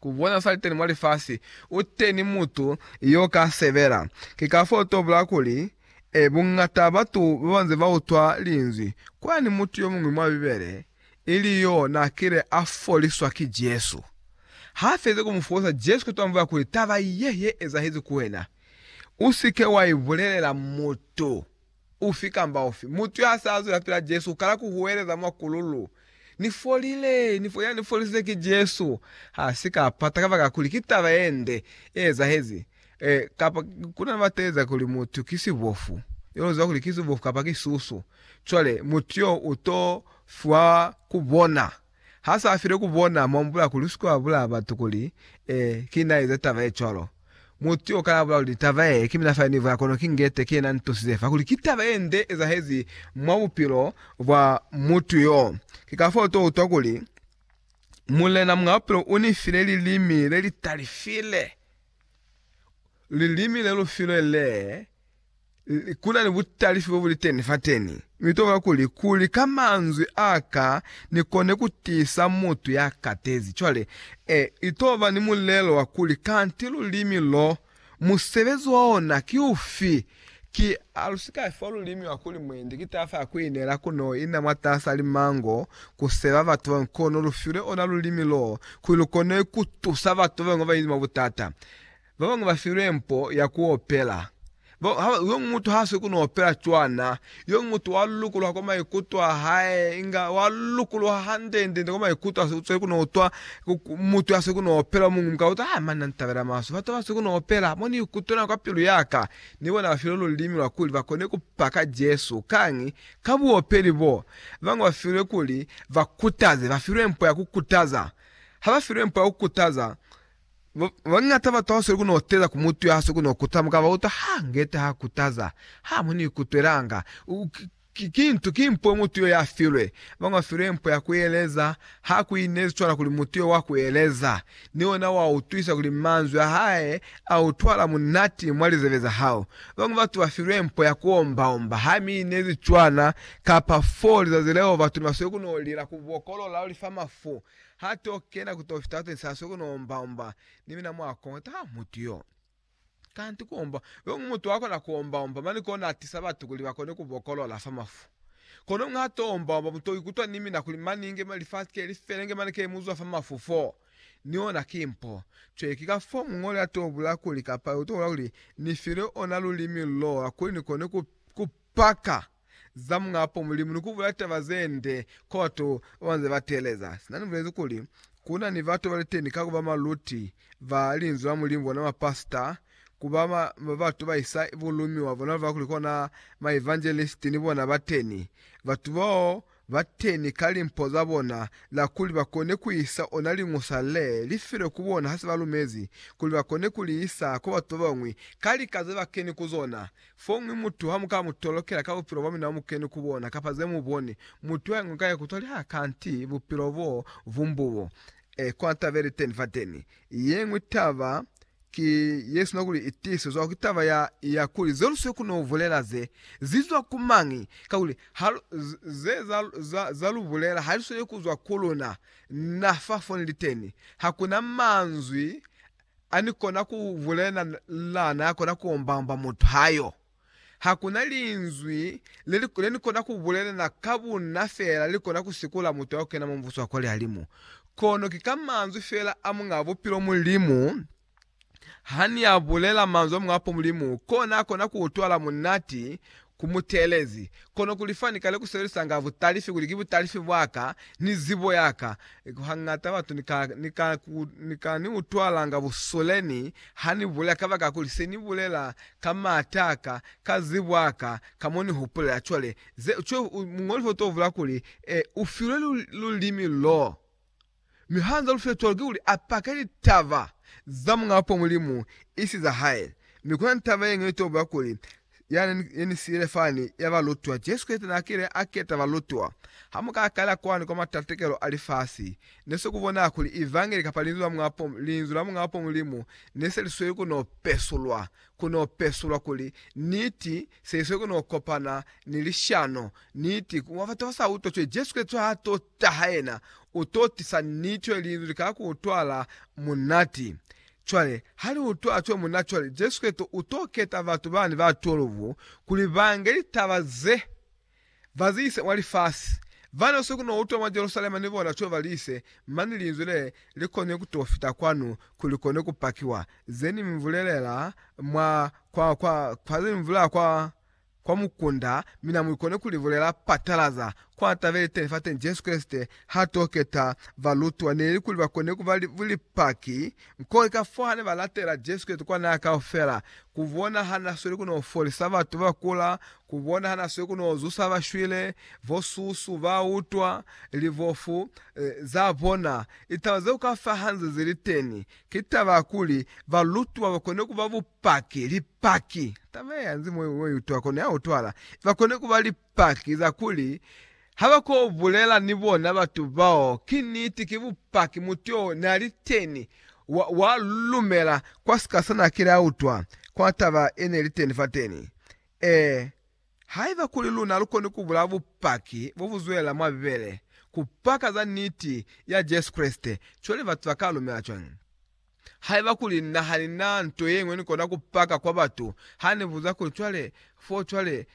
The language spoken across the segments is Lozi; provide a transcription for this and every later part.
ku bona sa li teni mwa lifasi, u teni mutu yo ka sebela. Ki kafoo to bula kuli, E, bungata batu ba ba nze ba utwa Linzwi. Kwani mutu yo muñwi mwa Bibele, ili yo na kile a foliswa ki Jesu. Ha fezi ku mu folisa, Jesu ka tambula kuli, Taba ye, ye ezahezi ku wena. U si ke wa i bulelela mutu. ufi kamba ufi. Mutu ya sa zwela pila Jesu u kala ku huweleza mwa kululu, Ni folile! Ni fo, ya ni folisize ki Jesu. Ha si ka pata kabakala kuli ki taba ye nde ye ezahezi, e, kapa ku na ni ba teeleza kuli mutu ki sibofu, yo lu ziba kuli ki sibofu kapa ki susu, cwale mutu yo u to fiwa ku bona. Ha sa file ku bona, mu ambula kuli u si ke wa bulaya batu kuli, Ee, ki na eza taba ye cwalo. Mutu yo kana bula kuli, Taba ye, ki mina fa ni buya kono ki ngete ki yena ntusize fa kuli ki taba ye nde ezahezi mwa bupilo bwa mutu yo. Ki kafao u to utwa kuli, Mulena Muñ'a Bupilo u ni file lilimi le li talifile, lilimi le lu filwe le. Kunani butali fyo buliteni fateni. Mitoka kuli, kuli ka manzwi aka nikone kutiisa mutu yakatezi. Cwale, e, itoba ni mulelo wa kuli, Kanti lulimi lo, musebezi wa ona ki ufi? Ki, alusika fiwa lulimi wa kuli, Mwendi ki tafa ya kuineela kuno ina mwataasa limango, kuseba batu babañwi, kono lufilwe ona lulimi lo, kuli lukone kutusa batu babañwi babañi mwa butata. Ba bañwi ba filwe mpo ya ku opela. Ba, ha, yoñwi mutu ha swi ku no opela cwana. Yoñwi mutu wa lukuluha kwa maikuto a hae, inga wa lukuluha hande-nde-nde kwa maikuto a si usweli ku no utwa ku, ku, mutu ya swi ku no opela. Yo muñwi mu ka utwa, Ah, mani na ni tabela maswe. Batu ba swi ku no opela, mo ni ikutwela kwa pilu ya ka. Ni bona ba filwe lulimi lwa kuli ba kone ku paka Jesu. Kañi? Ka buopeli bo. Ba bañwi ba filwe kuli ba kutaze, ba filwe mpo ya ku kutaza. Ha ba filwe mpo ya ku kutaza, Babañata batu abasweli ku no teza ku mutu ya haswe ku no kuta mukaba wa utwa ha ngete ha kutaza, Ha mu ni kutwelanga. Ki nto, ki mpo mutu yo ya filwe. Abañwi ba filwe mpo ya ku eleza. Ha ku inezi cwana kuli mutu yo wa ku eleza, ni ona wa utwisa kuli manzwi a hae a utwahala munati mwa lizebe za hao. Babañwi batu ba filwe mpo ya ku omba-omba. Ha mi inezi cwana, kapa foo lizazi leo batu ni basweli ku no lila ku bokolola leo li fa mafu. Ha to kena ku to fita twensa soko no omba omba ni mina mwa kongo ta mutu yo. Kanti ku omba yo ngu mutu wa kona ku omba omba mani kona a tisa batu kuli ba kone ku bokolola fa mafu. Kono mwa ha to omba omba mu to ikutwa ni mina kuli mani inge lifasi ke li fele nge mani ke mu zwa fa mafu fo. Ni ona ki mpo. Cwale ki ka fo muñoli a to bula kuli kapa yo to bula kuli ni file ona lulimi lo lwa kuli ni kone ku paka. za Muñapo Mulimu ni ku bula taba ze nde kwa batu ba ba nze ba teeleza. Sina ni bulezi kuli, Ku na ni batu ba li teni ka ku ba maluti ba Linzwi la Mulimu, bona mapasita, ku ba batu ba isa bulumiwa, bona ba kuli kona maevanjelisiti, ni bona ba teni. Batu bao bateni ka limpo za bona la kuli ba kone ku isa ona liñusa le li filwe ku bona ha se ba lumezi, kuli ba kone ku li isa kwa batu ba bañwi ka lika ze ba keni ku zona. Foñwi mutu ha mu ka mu tolokela ka bupilo bwa mina bu mu keni ku bona kapa ze mu boni, mutu yo ingo ka ikutwa liha kanti bupilo bo vumbubo. E kwanta be li teni fateni, Yeñwi taba ki yesina kuli i tiisezwa ki taba ya ya kuli ze lu si koni ku bulela ze zi zwa ku mañi, kakuli ha lu, ze za, za, za lu bulela ha li sweli ku zwa ku luna. Na fa fo ni li teni, ha ku na manzwi a ni kona ku bulelana ya kona ku omba-omba mutu ha yo. Ha ku na linzwi le li, le ni kona ku bulelana ka bunna fela li kona ku sikula mutu ya ku kena mwa Mubuso wa kwa lihalimu. Kono ki ka manzwi fela a Muñaa Bupilo Mulimu. Ha ni a bulela manzwi a Muñaa Bupilo Mulimu, ko na kona ku utwala munati, ku mu teelezi, kono kuli fa ni kale ku sebelisanga butalifi, kuli ki butalifi bwa ka, ni zibo ya ka, hangata batu ni ka, ni ka ku, ni ka ni utwalanga busule ni ha ni bulela, kabakakuli se ni bulela Ka maata a ka, ka zibo a ka, ka mo ni hupulela cwale, ze, cwe, u, muñoli ho to vula kuli, E, u filwe lu, lulimi loo. Mi ha nza lu file cwalo, kikuli a pake litaba za Muñapo Mulimu, isi za hae. Mi kuna ni taba yeñwi yeto bula kuli, Ya ne, ye ni siile fani, ya balutwa. Jesu Kreste na kile a keta balutwa. Ha mu ka kala kwani kwa matatekelo a lifasi, Ne se ku bona kuli Evangeli kapa Linzwi la Muñaa Pomu, Linzwi la Muñaa Pomu Mulimu, ne se li sweli ku no pesulwa, ku no pesulwa kuli Niti se i sweli ku no kopana ni lishano. Niti, ku mwa batu ba sa utwa cwale, Jesu Kreste ha a to taha Yena, u to tisa Niti, cwale Linzwi li ka ku utwala munati. Cwale, ha li utwala cwale munati, cwale Jesu Kreste u to keta batu bani ba 12 kuli ba nge litaba ze. Bazise wa lifasi bano si kuno utwa mwa Jerusalema ni bona cweva lise, mani linzwi le li koni kuto fita kwanu ku li koni ku pakiwa, ze ni mi vulelela mwa kwa, kwa, kwa, ze ni mi vulelela kwa, kwa mukunda, mina mu koni ku li bulela patalaza kwa taba ili teni fateni, Jesu Kreste ha to keta balutwa neli kuli ba koni kuba li, lipaki, kuli ka fo hane ba latela Jesu Kreste kwa nako kaufela, ku bona ha na sweli kuno folisa batu ba kula Ku bonahana swe ku no zusa ba shwile, bo susu, ba utwa, libofu, za bona. Litaba zeo ka fa hanze ze li teni. Ki taba ya kuli balutwa ba kone ku ba bupaki, lipaki, taba ye hanze mo yo utwa kono ya utwala, ba kone ku ba lipaki za kuli ha ba ko bulela ni bona batu bao, ki niti, ki bupaki, mutu yo na li teni, wa, wa lumela kwa sika sa na kile a utwa, kwa taba ye ne li teni fateni. Ee, haiba kuli luna lukoni kubulaya bupaki bobuzwelela mwa Bibele kupaka za niti ya Jesu Kreste, cwale batu baka lumela cwañi? Haiba kuli na hanina nto yeñwi nikona kupaka kwa batu, hanibuza kuli, Cwale, fo cwale,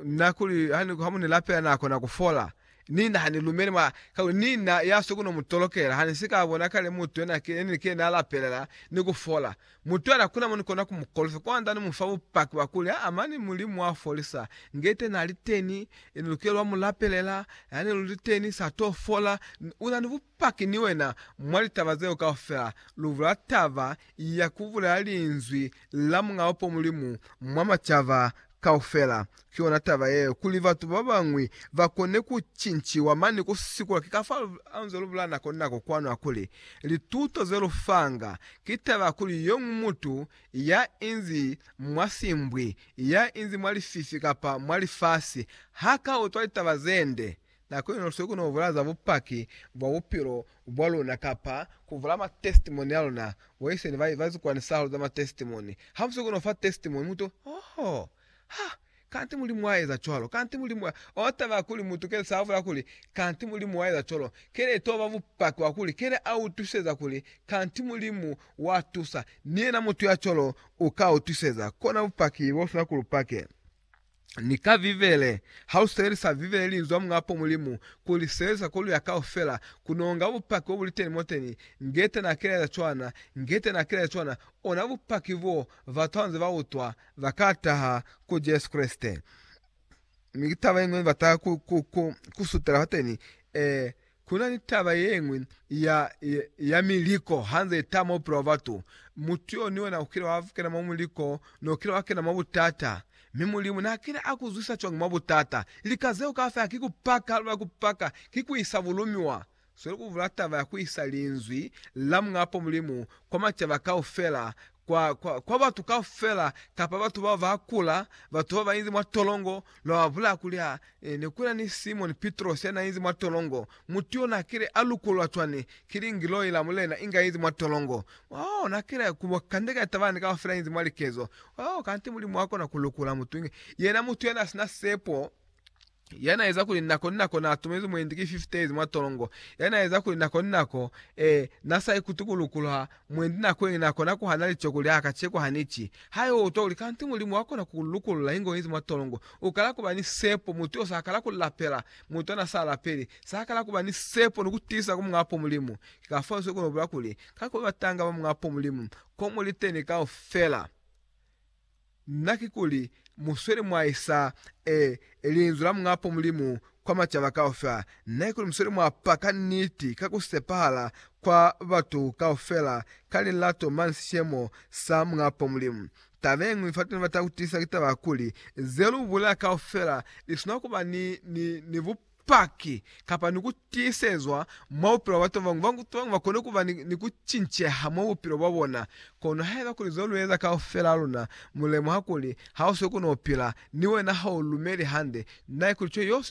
na kuli hamunilapela nakona kufola? Nina hanilumeli mwa, kakuli nina yasweko nomutolokela, hanisika bona kale mutu yenike naalapelela ni kufola. Mutu ya lakuna mo ni kona ku mu kolofya kwanda ni mu fa bupaki bwa kuli, Aa, mani Mulimu wa folisa. Nge ite na li teni, ni lukela wa mu lapelela. Yani lu li teni, sa to fola. U na ni bupaki ni wena mwa litaba zeo kaufela. Lu bula taba ya ku bulela Linzwi la Muñ'a Upo Mulimu mwa macaba Kaufela. Ki yona taba yeo, kuli batu babañwi bakone kucinciwa. Mane kusikula ki kafa anze lubula nako ni nako kwanu hakuli, lituto zelufanga, ki taba ya kuli yomuñwi mutu ya inzi mwa simbwi, ya inzi mwa lififi kapa mwa lifasi, haka utwa litaba zende Na ku inuswi ku no bula za bupaki bwa bupilo bwa luna kapa ku bula matestimoni a luna. Bo Iseni ba ba zikwani sa hahulu za matestimoni. Ha mu si ku no fa testimoni, mu to, Oho! Ha! Kanti Mulimu a eza cwalo! Kanti Mulimu a. Oh, taba ya kuli mutu kene sa bula kuli, Kanti Mulimu wa eza cwalo, kene itoba ba bupaki wa kuli kene a utwiseza kuli, Kanti Mulimu wa tusa. Ni yena mutu ya cwalo u ka utwiseza. Kona bupaki bo sina ku lu pake. ni ka Bibele. Ha u sebelisa Bibele Linzwi la Muñapo Mulimu, ku li sebelisa ku luya kaufela, ku nonga bupaki bo bu li teni moteni. Goethe n'a kelaeza cwana. Goethe n'a kelaeza cwana. Ona bupaki bo batu ha ba nze ba utwa ba ka taha ku Jesu Kreste. Mi ki taba ye ñwi ne ba taha ku, ku, ku, ku sutela fateni. Ee, Ku na ni taba ye ñwi ya, ya, ya miliko ha nze ita mwa bupilo bwa batu. Mutu yo ni wena u kile wa kena mwa muliko, ne u kile wa kena mwa butata. Mi Mulimu n'a kile a ku zwisa cwañi mwa butata? Lika zeo kaufela ki ku paka, ha lu na ku paka, ki ku isa bulumiwa. Sweli ku bula taba ya ku isa Linzwi la Muñ'a Poo Mulimu kwa macaba kaufela. kwa, kwa, kwa batu kaufela, kapa batu bao ba kula, batu bao ba inzi mwa tolongo, lwa ba bulaya kuli, Ha e, ne kuna ni Simoni Pitrosi ya na inzi mwa tolongo, mutu yo na kile a lukulwa cwani? Ki lingiloi la Mulena inga inzi mwa tolongo. Oh, na kile ku bo kandeka ni tabalani kaufela inzi mwa likezo. Oh, kanti Mulimu wa kona ku lukula mutu inge yena, mutu ya na sina sepo. ya na eza kuli nako ni nako na tumezi mwendi ki 50 days mwa tolongo, ya na eza kuli nako ni nako, ee, na sa ikuti ku lukulwa, mwendi nako yeñwi na kona ku hana lico kuli, Aa, kaceko ha ni ci. Ha yo utwa kuli, Kanti Mulimu wa kona ku ku lukulula inge u yezi mwa tolongo. U kala ku ba ni sepo, mutu yo sa kala ku lapela, mutu ana sa lapeli, sa kala ku ba ni sepo ni ku tiisa ku Muñaa Po Mulimu. Ki ka fao nse kona ku bula kuli, Ka ku ba batanga ba Muñaa Po Mulimu, ko mu liteni kaufela. Na kikuli musweli mwa isa e linzwi la Muñapo Mulimu kwa macaba kaufela? Na kikuli musweli mwa paka niti ka ku sepahala kwa batu kaufela ka lilato mane sishemo sa Muñapo Mulimu? Taba yeñwi fateni ni bata kutisa ki taba ya kuli, ze lu bulela kaufela li swanela kuba ni, ni, ni bupe. Bupaki, kapa ni ku tiisezwa mwa bupilo bwa batu babañwi. Batu babañwi bakona kuba ni ku cinceha mwa bupilo bwabona. Kono haiba kuli zelueza kaufela luna mulemuha kuli hausiyo kuno upila, ni wena haulumeli hande, naikuli cwale yosweli.